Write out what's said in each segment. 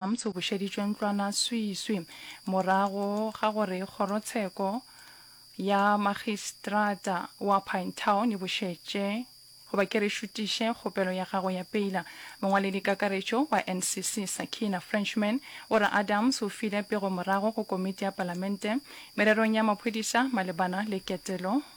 Arms o bušeditšwe ntlwana swiswi morago ga gore kgorotsheko ya makgistrata wa Pinetown e bušetše goba ke re šutiše kgopelo ya gagwe ya peila. Mongwaledikakaretšo wa NCC Sakina Frenchman o re Adams o file pego morago go komiti ya palamente mererong ya maphodisa malebana le ketelo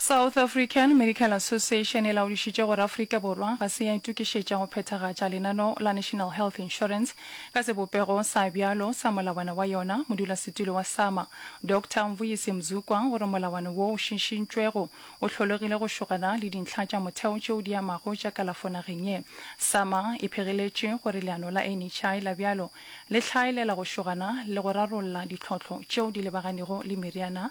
South African Medical Association e laodišitše gore Afrika Borwa ga se ya itokišetša go phethagatša lenano la National Health Insurance ka sebopego sa bjalo sa molawana wa yona. Modulasetulo wa SAMA, Doctor Mvuyisi Mzukwa o re molawana wo o šišintšwego o hlologile go šogana le dintlha tša motheo tšeo di amago tša kalafo nageng ye. SAMA e phegeletše gore leano la NHI la bjalo le hlaelela go šogana le go rarolla ditlhohlo tšeo di lebaganego le meriana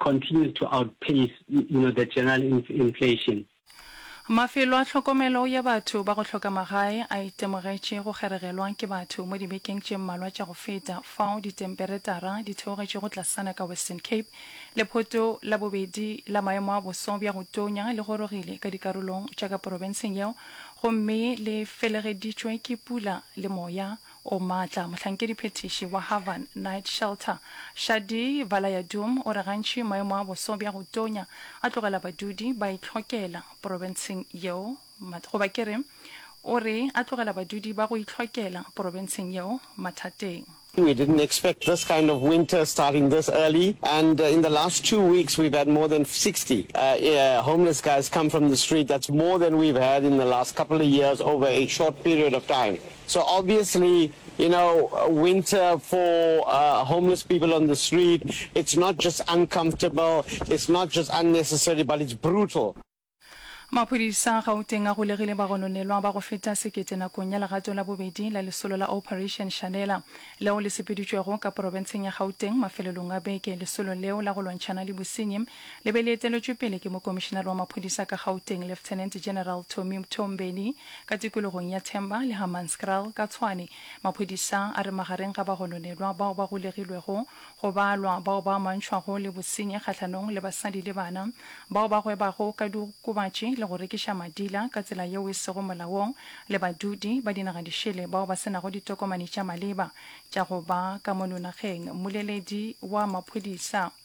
continues to outpace you know, the general inflation. Mafelo a tlhokomelo ya batho ba go hloka magae a itemogetše go kgeregelwa ke batho mo dibekeng tše mmalwa tša go feta fao ditemperetara di theogetšego tlasana ka Western Cape. Lephoto la bobedi la maemo a boso bja go tonya le gorogile ka dikarolong tša ka porofenseng yeo gomme le felegeditšwe ke pula le moya o maatla, mohlankediphethiši wa Havan Night Shelter, Shadi Valayadum o re gantši maemo a boso bja go tonya a tlogela badudi ba itlhokela porobentsheng yeo ma, goba ke re, o re a tlogela badudi ba go itlhokela porobentsheng yeo mathateng. We didn't expect this kind of winter starting this early and in the last two weeks we've had more than 60 homeless guys come from the street, that's more than we've had in the last couple of years over a short period of time. So obviously, you know, winter for uh, homeless people on the street, it's not just uncomfortable, it's not just unnecessary, but it's brutal. Maphodisa a Gauteng a golegile bagononelwa ba go feta sekete nakong ya legato la bobedi la lesolo la Operation Shanela leo le sepeditšwego ka porofenseng ya Gauteng mafelelong a beke. Lesolo leo la go lwantšhana le bosenyi le be le eteletšwe pele ke mokomišenare wa maphodisa ka Gauteng, Lieutenant General Tommy Mthombeni. Ka tikologong ya Themba le Hammanskraal ka Tshwane, maphodisa a re magareng ga bagononelwa bao ba golegilwego go balwa bao ba amantšhwago le bosenyi kgahlanong le basadi le bana, bao ba gwebago ka diokobatši le go rekiša madila ka tsela yeo e sego molaong le badudi ba dinagadišele bao ba se nago ditokomane tša maleba tša go ba ka mono nageng. Mmoleledi wa maphodisa.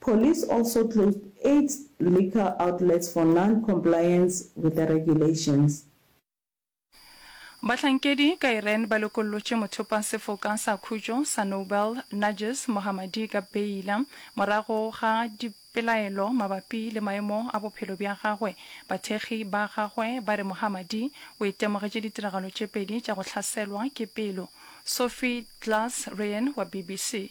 Police also closed eight liquor outlets for non-compliance with the regulations. Bahlankedi ka Iran ba lokollotše mothopasefoka sa khutšo sa Nobel Narges Mohammadi ka beila morago ga dipelaelo mabapi le maemo a bophelo bja gagwe. Bathekgi ba gagwe ba re Mohammadi o itemogetše ditiragalo tše pedi tša go hlaselwa ke pelo. Sophie Glass-Ryan wa BBC.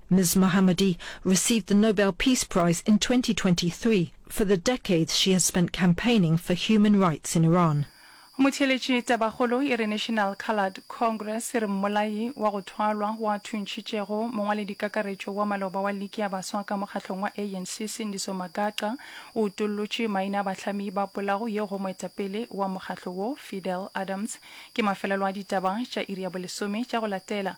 Ms Mohammadi received the Nobel Peace Prize in twenty twenty three for the decades she has spent campaigning for human rights in Iran. Motheeletši Tabakgolo e re National Coloured Congress e re mmolai wa go thwalwa o a thuntšhitšego mongwaledikakaretšo wa maloba wa liki ya baswa ka mokgahlong wa ANC Sindiso Magaqa o utollotše maina a bahlami ba polago yeo go moetapele wa mokgahlo wo Fidel Adams. Ke mafelelo a ditaba tša iri ya bolesome tša go latela.